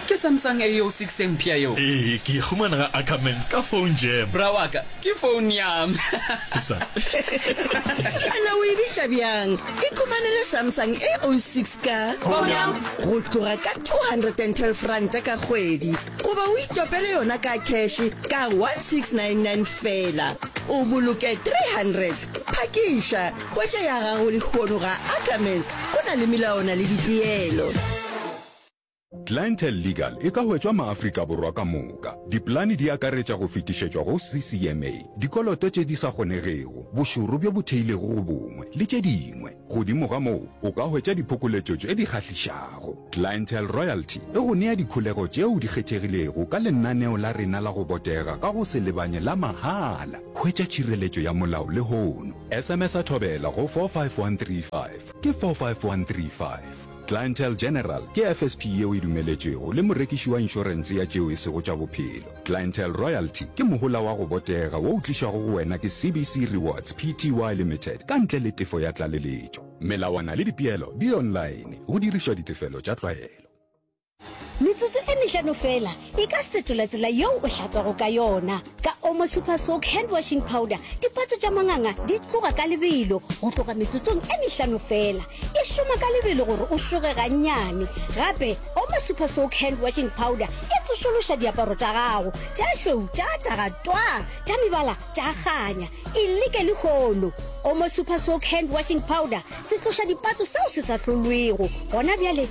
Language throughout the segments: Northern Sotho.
Ke Samsung AO6 e mpsha yeo. Ee, ke e humana ga Ackermans ka phone jam. Bra wa ka, ke phone ya me. O sa. A na o e biša bjang? Ikhumanele Samsung AO6 ka. Phone ya me. Go tloga ka R212 ka kgwedi goba o itopele yona ka kheshe ka R1699 feela, o boloke R300. Phakiša! Potše ya gago lehono ga Ackermans go na le melaona le dipeelo. Clientele Legal e ka hwetšwa maAfrika Borwa ka moka. Dipolane di akaretša go fetišetšwa go CCMA, dikoloto tše di sa kgonegego, bošoro bjo bo theilego go bongwe, le tše dingwe. Godimo ga moo, o ka hwetša diphokoletšo tše di kgahlišago. Clientele Royalty e go nea dikholego tšeo di kgethegilego ka lenaneo la rena la go botega ka go se lebanye la mahala. Hwetša tšhireletšo ya molao lehono. SMS-a Thobela go 45135. Ke 45135. Clientele General ke FSP yeo e dumeletšwego le morekiši wa inšorense ya tšeo e sego tša bophelo. Clientele Royalty ke mohola wa go botega wo o tlišwago go wena ke CBC Rewards Pty Limited ka ntle le tefo ya tlaleletšo. Melawana le dipeelo di online go dirišwa ditefelo tša tlwaelo. Metsotso e mehlano feela e ka fetola tsela yeo o hlatswago ka yona. Ka Omo Super Soak Hand Washing Powder, dipatso tša manganga di tloga ka lebelo go tloga metsotsong e mehlano feela. E šoma ka lebelo gore o šoge gannyane. Gape, Omo Super Soak Hand Washing Powder e tsošološa diaparo tša gago tša šweu tša taga twaa, tša mebala tša kganya. E leke lehono! Omo Super Soak Hand Washing Powder se tloša dipatso seo se sa hlolwego gona bjale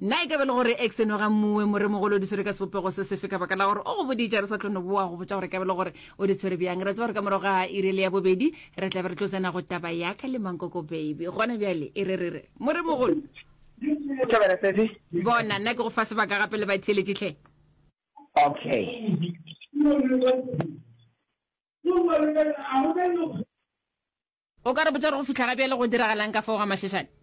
Na e ka ba e le gore X eno ga mmuwe moremogolo o di tshwere ka sebopego se sefe ka baka la gore o go boditša re sa tlo no boa go botša gore e ka ba e le gore o di tshwere bjang? Re tseba gore ka morago ga iri le ya bobedi re tla be re tlo tsena go taba ya ka le mankoko baby. Gona bjale e re re re moremogolo bona nna ke go fa sebaka gape le batheeletši tlhe. Okay. O ka re botša gore go fitlha ga bjale go diragalang ka fao ga mašešane?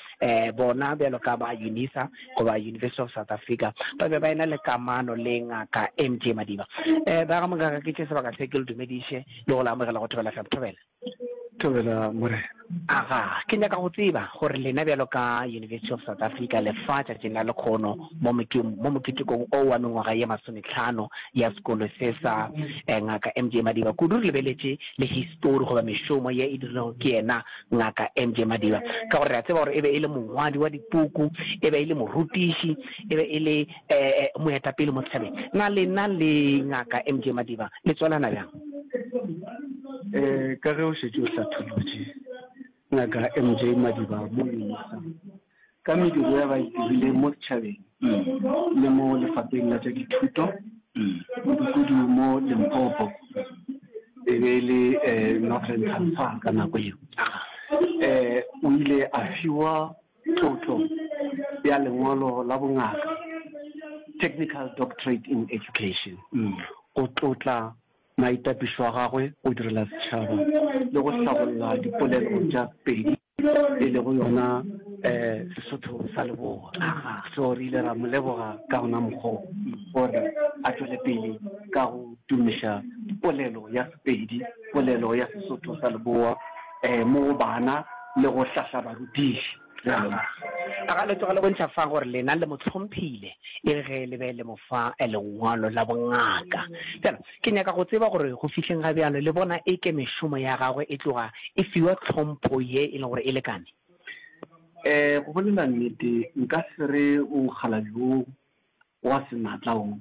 um bona bjalo ka ba unisa goba university of south africa ba be ba ena le kamano le ngaka m j madiba um eh, ba ga mongaka ke tše sebaka se ke le dumediše le go le amogela go thobela fm thobela thobela morena aga ke nyaka go tseba gore lena bjalo ka university of south africa lefa tšatšing la lekgono mo moketekong o wa mengwaga ye masometlhano ya sekolo se sa eh, ngaka m j madiba kudu re lebeletše le histori goba mešomo ye e dirilego ke yena Ngaka M. J. Madiba, ka gore re a tseba gore e be e le mongwadi wa dipuku, e be e le morutiši, e be e le eh, moetapele mo setšhabeng. Na lena le Ngaka M. J. Madiba le tswalana bjang? Eh, ka ge o šetše o hlatholotše, Ngaka M. J. Madiba mo UNISA ka mediro ya ba e dirileng mo setšhabeng le mo lefapheng la tša dithuto kudu-kudu mo Limpopo e be e le um Northern Transvaal ka nako eo. Um o ile a fiwa tlotlo ya lengolo la bongaka technical doctorate in education go tlotla maitapišo a gagwe go direla setšhaba le go hlabolla dipolelo tša Pedi. e lego yona um Sesotho sa Leboa. So re ile ra mo leboga ka ona mokgwa o gore a tšwele pele ka go tumiša polelo ya Sepedi, polelo ya Sesotho sa Leboa um mo go bana le go hlahla barutiši. Ga le tloga le bontšha fa gore lena le mo hlomphile e re ge le be le mo fa lengwalo la bongaka. Ke nyaka go tseba gore go fihleng ga bjalo le bona e ke mešomo ya gagwe e tloga e fiwa tlhompho ye e lego gore e lekane? Ee, go bolela nnete, nka se re o mokgalabje wo wa senatla wo.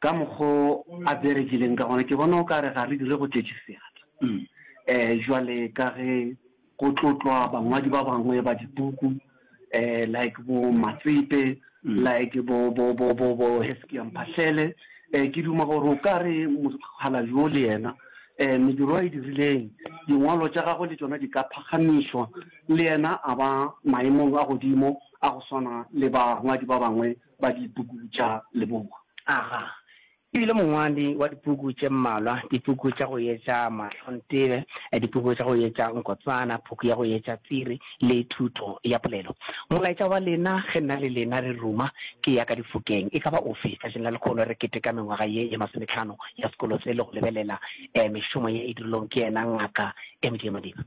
Ka mokgwa o a berekileng ka gona, ke bona o ka re ga re dire go tletše seatla. Ee, bjale ka ge. Go tlotlwa bangwadi ba bangwe ba dipuku um like bo Matsepe, like bo bo bo bo bo Heskia Mphahlele. Um ke duma gore o ka re mokgalabje wo le yena um mediro a e dirileng, dingwalo tša gagwe le tšona di ka phagamišwa, le yena a ba maemong a godimo a go swana le bangwadi ba bangwe ba dipuku tša Leboa. Aga, E bile mongwadi wa dipuku tše mmalwa, dipuku tša go etša mahlontebe, dipuku tša go etša nkotsana, puku ya go etša tsiri le thuto ya polelo. Molaetša wa lena ge nna le lena re ruma ke ya ka difokeng e ka ba ofe tšatšing la lekgolo re keteka mengwaga ye ye masometlhano ya sekolo se le go lebelela mešomo ye e dirilweng ke yena Ngaka MJ Madiba?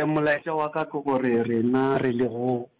Molaetša wa ka ke gore rena re lego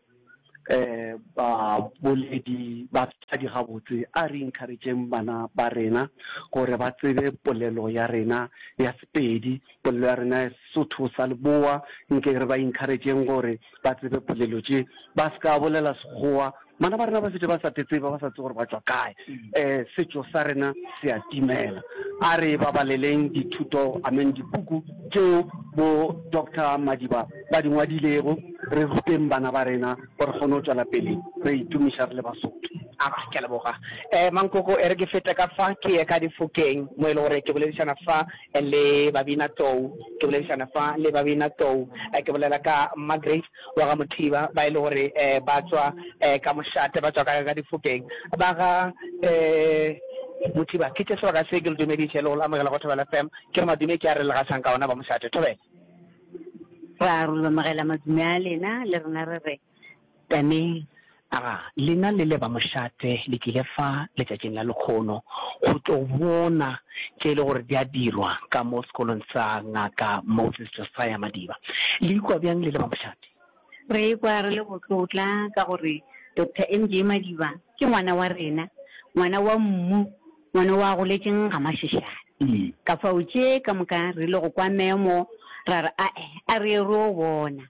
um baboledi batswadi gabotse a re encourageng bana ba rena gore ba tsebe polelo ya rena ya sepedi polelo ya rena ya sesotho sa leboa nke re ba encourageng gore ba tsebe polelo tše ba se ka bolela sekgowa bana ba rena ba fete ba sa tetseba ba sa tse gore ba tswa kae um setšo sa rena se a timela a re babaleleng dithuto amen dipuku tšeo bo doctor madiba ba di ngwadilego, re ruteng bana ba rena gore re kgone go tšwela pele re itumiša re le Basotho. A, ke a leboga. Eh, Mankoko, e re ke fete ka fa ke ye ka Difokeng mo e le gore ke boledišana fa le Babina Tou, ke boledišana fa le Babina Tou, eh, ke bolela ka Margaret wa ga Mothiba ba e le gore eh, ba tšwa eh, ka mošate, ba tšwa ka ka Difokeng ba ga eh, Mothiba. Ke tše sebaka se ke le dumediše le go le amogela go Thobela FM. Ke re madume ke a re le gašang ka ona ba mošate. Thobela. Ra rulomagela madume a lena, le rena re re, Tameng. Aga, lena le le ba mošate le tlile fa letšatšing la lekgono go tlo bona tše e le gore di a dirwa ka mo sekolong sa Ngaka Moses Josiah Madiba. Le ikwa bjang le le ba mošate? Re ikwa re le botlotla ka gore Doctor MJ Madiba ke ngwana wa rena, ngwana wa mmu. Ngwana wo a goletšeng ga Mašešane. Ka fao tše ka moka re ile go kwa memo, ra re, A-e, a re ye re yo bona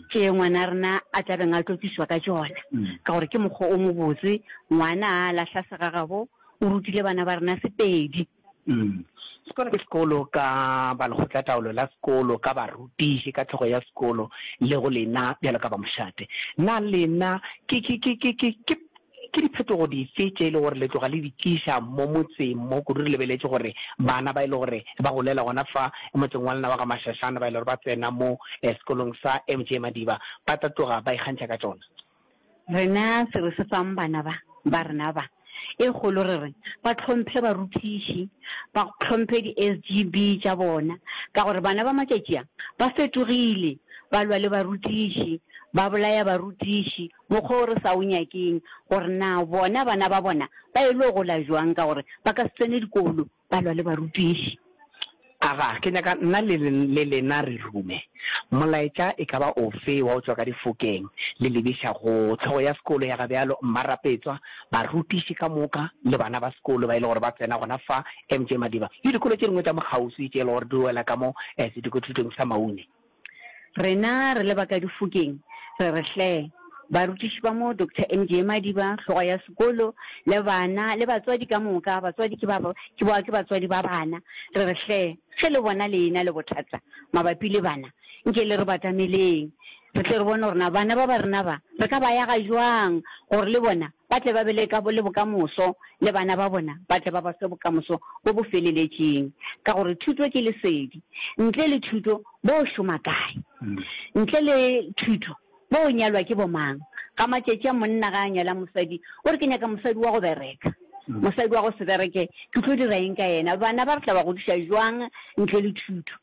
tše ngwana rena a tla beng a tlo tlišwa ka tšona, ka gore ke mokgwa o mobotse. Ngwana a lahla segagabo, o rutile bana ba rena Sepedi. Sekolo ke sekolo ka balekgotlataolo la sekolo, ka barutiši, ka hlogo ya sekolo, le go lena bjalo ka bamošate. Na lena ke, ke, ke, ke, ke, ke Ke diphetogo dife tše e lego gore le tloga le di tliša mo motseng mo, kudu re lebeletše gore bana ba e lego gore ba golela gona fa motseng wa lena wa Gamashashane ba e lego gore ba tsena mo sekolong sa MJ Madiba ba tla tloga ba ikgantšha ka tšona? Rena se re se fang bana ba ba rena ba e kgolo re re ba hlomphe barutiši, ba hlomphe di-SGB tša bona ka gore bana ba matšatši a ba fetogile, ba lwa le barutiši, ba bolaya barutiši, Mokgwa wo re sa o nyakeng, gore na bona bana ba bona ba elo gola jwang ka gore ba ka se tsene dikolo ba lwa le barutiši. Aga, ke nyaka nna le, le lena re rume. Molaetša e ka ba ofe wa go tšwa ka difokeng le lebiša go hlogo ya sekolo ya ga bjalo Mmarapetswa, barutiši ka moka le bana ba sekolo ba e le gore ba tsena gona fa MJ Madiba le dikolo tše dingwe tša mo kgauswi tše e le gore di wela ka mo Sedikothutong sa Maune. Rena re le ba ka Difokeng re re hle, barutiši ba mo Doctor MGA Madiba, hlogo ya sekolo, le bana le batswadi ka moka, batswadi ke ba, ke ba, ke batswadi ba bana, re re hle, ge le bona le ena le bothata mabapi le bana, nke le re batameleng re tle re bone gore na bana ba ba rena ba re ka ba yaga jwang gore le bona ba tle ba be le ka le bokamoso, le bana ba bona ba tle ba ba fe bokamoso bo bo feleletšeng. Ka gore thuto ke lesedi. Ntle le thuto, bo o šoma kae? Ntle le thuto, bo o nyalwa ke bomang? Ga matšatši a monna ga a nyala mosadi, o re, Ke nyaka mosadi wa go bereka. Mosadi wa go se bereke, ke tlo dira eng ka yena? Bana ba re tla ba godiša bjang ntle le thuto?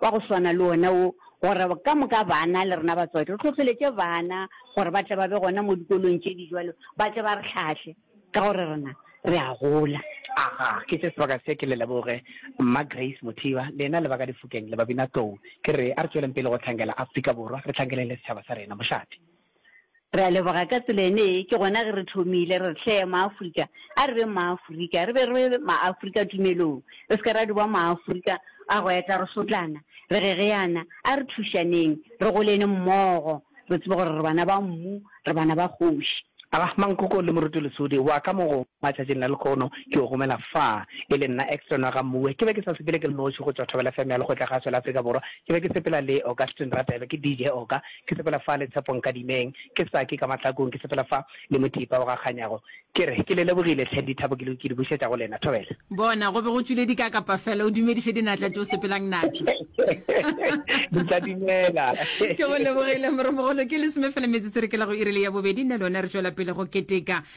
wa go swana le wona wo, gore ka moka bana le rena batswadi re hlohleletše bana gore ba tle ba be gona mo dikolong tše di jwalo, ba tle ba re hlahle ka gore rena re a gola. Aha, ke tše sebaka se, ke le leboge Mma Grace Mothiba, lena le ba ka difokeng le babinatlou. Ke re a re tšweleng pele go hlankela Afrika Borwa, re hlankele le setšhaba sa rena. Mošate. Re a leboga ka tsela ene ye, ke gona ge re thomile re hle Maafrika, a re beng Maafrika, re be re be Maafrika tumelong, re se ke ra di ba Maafrika a go etla re sotlana, re gegeana, a re thušaneng, re golene mmogo, re tsebe gore re bana ba mmu, re bana ba kgoši. Arahman Koko le Moruti Lesodi wa ka mo go. Matšatšing a lekhono ke o romela fa e le nna Exton wa ga Mmuwe. Ke be ke sa sepele ke le noši go tšwa Thobela FM ya Lekgotlakgaso la Afrika Borwa. Ke be ke sepela le Augustine Radebe, ke DJ Oga. Ke sepela fa le Tshepo Nkadimeng, ke Saki ka mahlakong. Ke sepela fa le Mothipa o ga Kganyago. Ke re ke le lebogile tlhe dithabo ke di bušetša go lena. Thobela. Bona, go be go tšwile dikakapa fela. O dumediše dinatla tšeo sepelang natšo. Di tla dumela. Ke go lebogile, Moromogolo. Ke lesome fela metsotso re ke la go iri le ya bobedi, nna le wena re tšwela pele go keteka